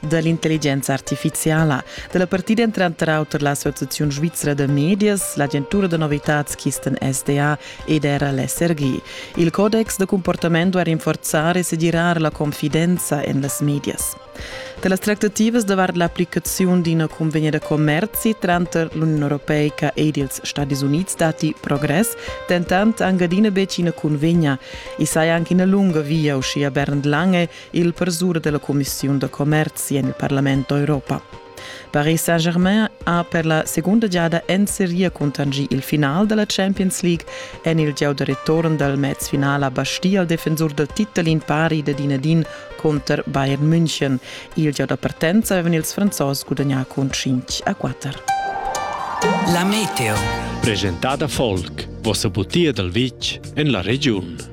da l'intelligenza artifiziala. Da la partida èn tranter auter l'Associaziun svizra da medias, l'agentura da novitads Kisten SDA ed era l'SRG. Il codex da cumportament duai rinforzar e segirar la confidenza en las medias. Da las tractativas davart l'applicaziun d'ina cunvegna da commerzi tranter l'Uniun europeica ed ils Stadis Unids datti progress, dentant anc adina betg ina cunvegna. I saja anc ina lunga via, uschia Bernd Lange, il persur della Commissiun da commerzi en il Parlament d'Europa. Paris Saint-Germain ha per la segunda giada en seria contangì il final della Champions League en il gieu da return dal mezfinale a Bastia al defensur dal titel in pari da Dinedin contro Bayern München. Il gieu da partenza avevano ils franzos gudagnà con 5 a 4. La Meteo. Presentada Volk, vossa butia dal vitg en la regiun.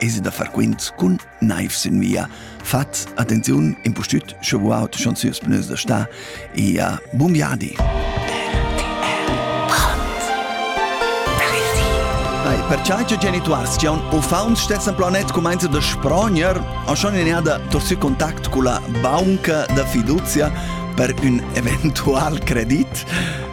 Esi da far quints cun naiv sin via. Fats attenziun, impustüt sche auto schon süs pneus da sta e ja, bun viadi! Perciai che genituars che han uffaunts stessen planet comenza da sproner, ha schon inada tosi contact con la banca da fiducia per un eventual credit.